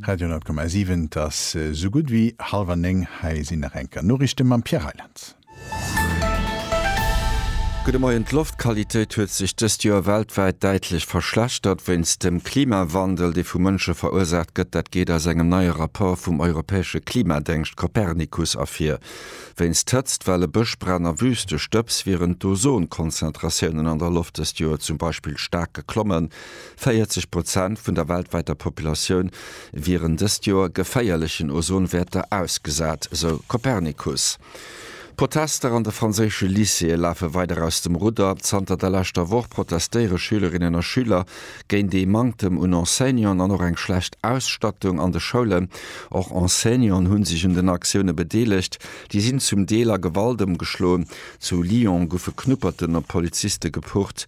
Radio 10,7, Et ass sou gutt wéi hallwer néng. Hei sinn nach eng Kéier Noriichte mam Pierre Reyland. Gudde Moien, D'Loftqualitéit huet sech dëst Joer weltwäit däitlech verschlechtert wéinst dem Klimawandel, dee vu Mënsche verursaacht gëtt. Dat geet aus engem neie Rapport vum europäesche Klimadéngscht Copernicus ervir. Wéinst Hëtzt, Welle, Bëschbränn a Wüstestëbs wieren d'Ozonkonzentratiounen an der Loft dëst Joer zum Beispill staark geklommen, 40 Prozent vun der weltwäiter Populatioun wieren dëst Joer geféierlechen Ozonwäerter ausgesat, sou Copernicus. D'Protester an de franséische Lycéeë lafe weider aus dem Rudder. Zanter der leschter Woch protestéiere Schülerinnen a Schüler géint ee Manktem un Enseignanten an och eng schlecht Ausstattung an de Schoulen. Och Enseignanten hu sech un den Aktioune bedeelegt. Déi sinn zum Deel a Gewalt ëmgeschloen. Zu Lyon goufe Knupperten op Poliziste gepucht.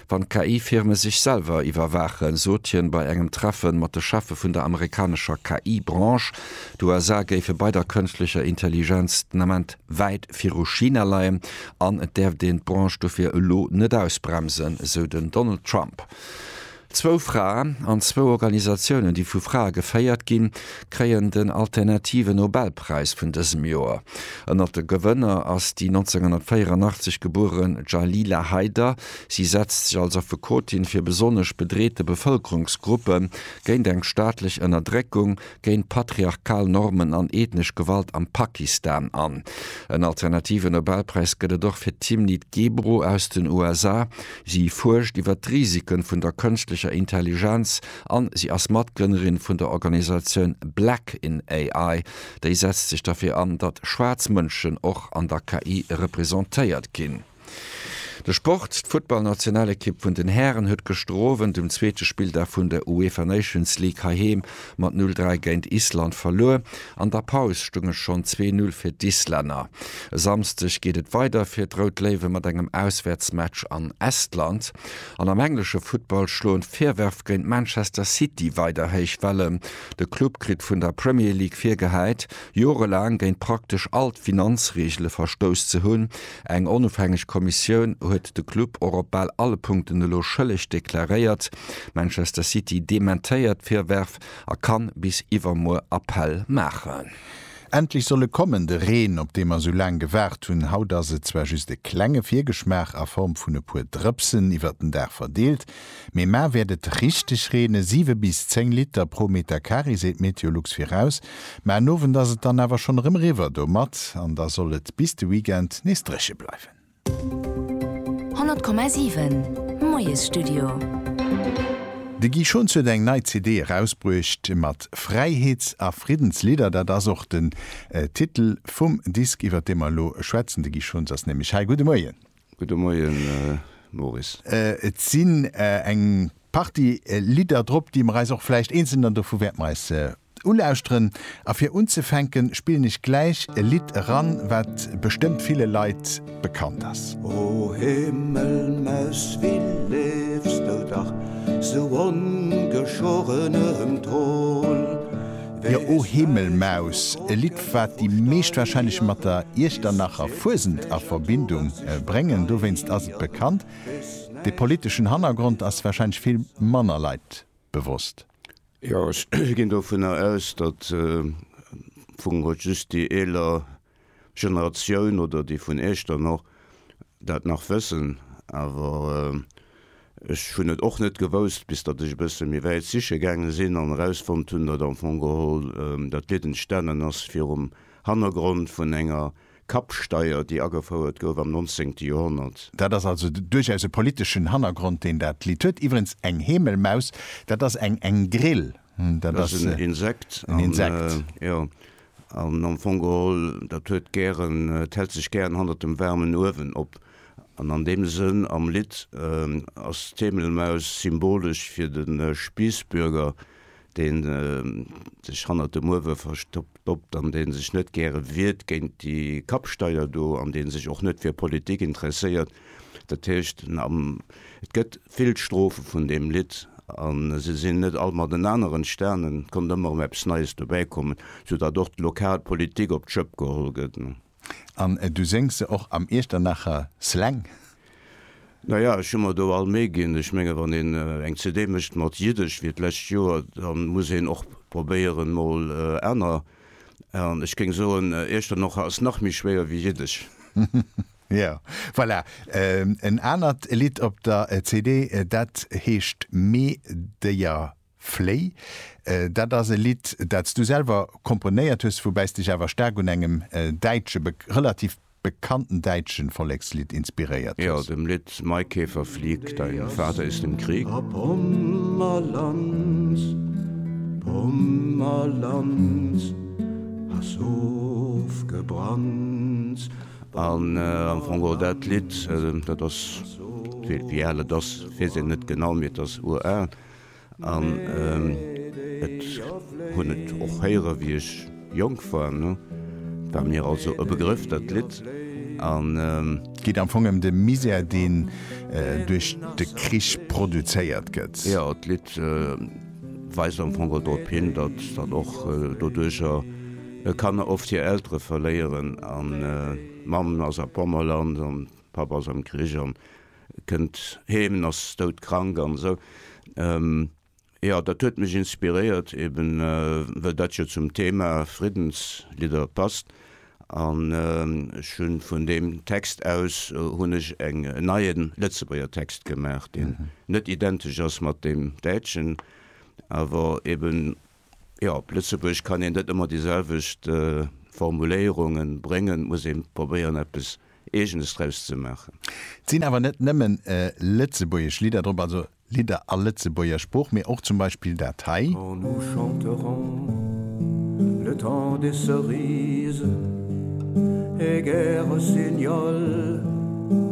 Wann d'KI-Firme sech selwer iwwerwaachen, sot hien bei engem Treffe mat de Cheffe vun der amerikanescher KI-Branche. D'USA géife bei der kënschtlecher Intelligenz den Ament wäit viru China leien an et däerft een d'Branche dofir elo net ausbremsen, esou den Donald Trump. Zwou Frae an zwou Organisatiounen, déi vu Frae geféiert ginn, kréien den alternative Nobelpräis vun dësem Joer. Ënnert de Gewënner ass déi 1984 gebuere Jalila Haider, Si setzt sech als Affekotin fir besonnesch bedreete Bevëlkerungsgruppe, géint eng staatlech Ënnerdréckung, géint patriarchal Normen an ethnesch Gewalt am Pakistan an. En alternative Nobelpräis gëtt et och fir d'Timnit Gebru aus den USA. Si fuerscht iwwer d'Risike vun der kënschtlecher Intelligenz an si ass Matgrënnerin vun der Organisatioun Black in AI. Déi setzt sech derfir an, datt schwaarz Mënschen och an der KI representéiert ginn. De Sport, D'Futtballnationalekipp vun den Hären huet gëschter Owend um zweete Spilldag vun der UEFA Nations League heiheem mat 0, 3 géint Island verluer. An der Paus stoung et schonn 2, 0 fir d'Islänner. E Samsdeg geet et weider fir d'Rout Léiwe mat engem Auswäertsmatch an Estland. An am englesche Futtball schloen d'Virwërf géint Manchester City weider héich Wellen. De Club kritt vun der Premier League virgehäit, jorelaang géint praktesch all d'Finanzreegele verstouss ze hunn. Eng onofhängeg Kommissioun huet de Club och op bal alle Punkten elo schëlleg deklaréiert. Manchester City dementéiert d'Virwërf a kann bis iwwermuer Appell maachen. Endlech soll e kommen, de Reen, op dee mer esou laang gewaart hunn. Haut ass et zwar just e klenge Virgeschmaach a Form vun e puer Drëpsen iwwert den Dag verdeelt, Mee mar wäert et richteg reene, siwe bis zéng Liter pro Meter Carré seet Meteolux viraus. Ma en Owend ass et dann awer schonn erëm riwwer domat an da soll et bis de Weekend nees dréche bleiwen. 100,7 Moiesstudio. De Guy Schons huet eng nei CD erausbruecht mat Fräiheets a Friddenslidder. Dat ass och den Titel vum Disk iwwert dee mer elo schwätzen. De Guy Schons ass nämlech hei. Gudde Moien. Gudde Moien, Maurice. Et sinn eng Partie Lidder drop, déi mer eis och vläicht eenzeln dann dovu wäerte mer eis ulauschteren. A fir unzefänken, spillen ech gläich e Lidd eran, wat bestëmmt ville Leit bekannt ass. O Himmelmaus, wéi leefs du dach sou ongeschoren ëm d'Holl? Jo o Himmelmaus, e Lidd wat déi meescht wahrscheinlech mat der Iechternacher Fuesent a Verbindung bréngen, dowéinst ass et bekannt. De politeschen Hannergrond ass wahrscheinlech vill manner Leit bewosst. Jo ech ginn dovunner aus, datt vu just déi eeler Generatioun oder déi vun Iech dann och dat nach wëssen, awer ech hunn et och net gewousst, bis datt ech e bësse méi wäit siche gaange sinn an erausfonnt hunn, datt am Fong geholl dat Lidd entstanen ass virum Hannergrond vun enger Kappsteier, déi agefouert gouf am nonzéngte Joerhonnert. Dat ass also duerchaus e politeschen Hannergrond, deen dat Lidd huet. Iwwerens, eng Hemelmaus, dat ass eng Grille. Dat ass en Insekt, jo. An am Fong geholl, dat huet gären, et hält sech gären hannert dem waarmen Uewen op. An an deem Sënn, am Lidd ass d'Heemelmaus symbolesch fir de Spiissbürger, dee sech hannert dem Uewe verstoppt an dee sech net gäre wiert géint déi Kappsteier do an dee sech och net fir Politik interesséiert. Dat heescht, et gëtt vill Strophe vun deem Lidd a se sinn net all matenaner entstan, et konnt ëmmer erëm eppes Neies dobäi kommen, soudatt och d'lokal Politik op d'Schëpp geholl gëtt. An du séngs se och am Iechternacher Slang? Na ja, ech hu mer do all Méi ginn. Ech menge wann een eng CD mécht mat Jiddesch, wéi d'lescht Joer, da muss een och probéieren, mol aner, an ech géing soen, Iechternocher ass nach méi schwéier wéi Jiddesch. Jo, voilà, en anert Lidd op der CD, dat heescht Me Déier fléi. Dat ass e Lidd, dat s du selwer komponéiert hues, woubäi s dech awer staark un engem däitsche, relativ bekannten däitsche Vollekslidd inspiréiert Jo, hues. dem Lidd Maikäfer flieg, dein Vater ist im Krieg. A Pommerland, Pommerland, ass ofgebrannt. An am Fong och dat Lidd, dat ass, wéi al et ass, weess een net genau, mee et ass ural. An et hunn et och héiere wéi ech jonk war. Et war mir also e Begrëff, dat Lidd. An. Et geet am Fong ëm de Misär, deen duerch de Krich produzéiert gëtt. Jo, d'Lidd weist am Fong och drop hin, datt dat och doduercher. E Kanner oft hir Eltere verléieren an d'Mamm ass a Pommerland an d'Papp ass am Krich an kënnt heem en ass doudkrank an esou. Jo dat huet mech inspiréiert eben well dat jo zum Thema Friddenslidder passt an ech hunn vun deem Text aus hunn ech eng en neie Lëtzebuerger Text gemaach deen net identesch ass mat deem däitschen awer eben Jo, op Lëtzebuergesch kann een net ëmmer déi selwecht Formuléierunge bréngen, et muss ee probéieren eppes Eegenes draus ze maachen. Et sinn awer net nëmmen lëtzebuergesch Lidder drop, also Lidder a Lëtzebuerger Sprooch, mee och zum Beispill dat hei. Quand nous chanterons le temps des cerises et guerre rossignol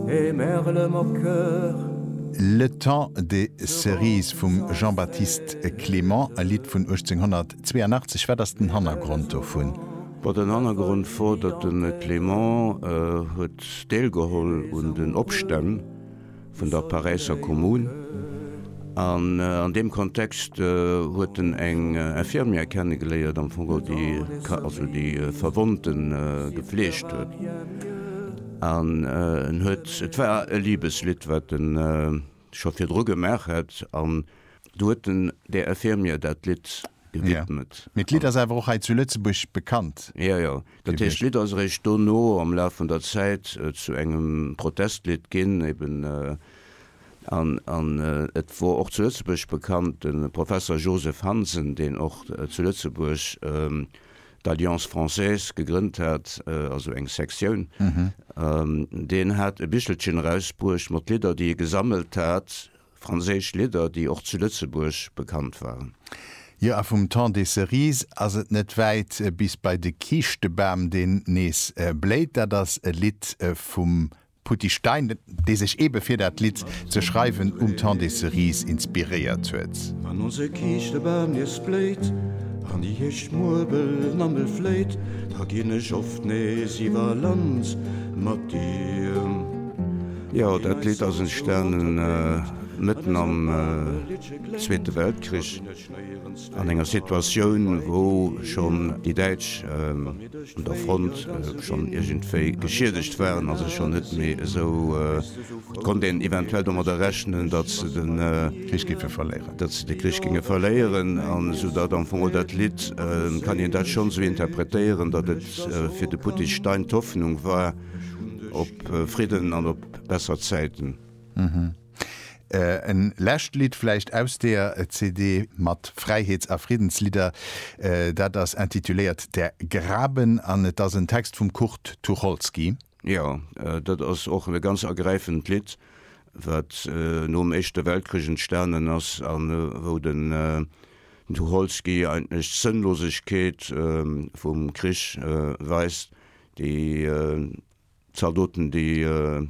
et merle moqueur. Le temps des cerises vum Jean-Baptiste. E Clément, e Lidd vun 1882, wat ass den Hannergrond dovun? Bon, den Hannergrond wor, datt de Clément huet deelgeholl un den Opstänn vun der Paräisser Kommune an an deem Kontext huet en eng Infirmière kennegeléiert, am Fong geholl déi ka, also déi Verwonnte gefleegt huet an en huet, et war e Libeslidd wat en scho virdru gemaach hätt an do huet den DR Fehr mir dat Lidd gewidmet. Jo, mee d'Lidd ass awer och hei zu Lëtzebuerg bekannt gewiescht. Jo, jo, dat heescht d'Lidd ass eréischt dono am Laf vun der Zäit zu engem Protestlidd ginn eben an an et wor och zu Lëtzebuerg bekannt. De Professer Joseph Hansen, deen och zu Lëtzebuerg d'Alliance française gegrënnt hat, also eng Sektioun, deen hat e Bichelchen erausbruecht mat Lidder, déi e gesammelt hat, franséisch Lidder, déi och zu Lëtzebuerg bekannt waren. Jo, a vum Temps des cerises ass et net wäit bis bei de Kiischtebam, deen nees bléit. Dat ass e Lidd vum Putty Stein, dee sech ebe fir dat Lidd ze schreiwen um Temps des Cerises inspiréiert huet. Wann onse Kiischtebam nees bléit an déi Hierschtmuerbel namme fléit, da ginn ech oft nees iwwer Land mat dir. Jo, dat Lidd ass entstanen mëtten am Zweete Weltkrich. An enger Situatioun, wou schonn déi Däitsch un der Front schonn iergendwéi geschiedegt waren a sech schonn net méi esou, konnt een eventuell domadder rechnen, datt se de Krich géife verléieren, datt se de Krich géinge verléieren, an esou datt am Fong dat Lidd, kann een dat schonn esou interpretéieren, datt et fir de Puttis Stein d'Hoffnung war op Fridden an op besser Zäiten. En lescht Lidd vläicht aus deer CD mat Fräiheets a Friddenslidder, dat ass intituléiert Der Graben an et ass en Text vum Kurt Tucholsky. Jo, dat ass och e ganz ergräifend Lidd, wat nom Éischte Weltkrich entstanen ass a wou den Tucholsky eigentlech d'Sënnlosegkeet vum Krich weist, déi Zaldoten, déi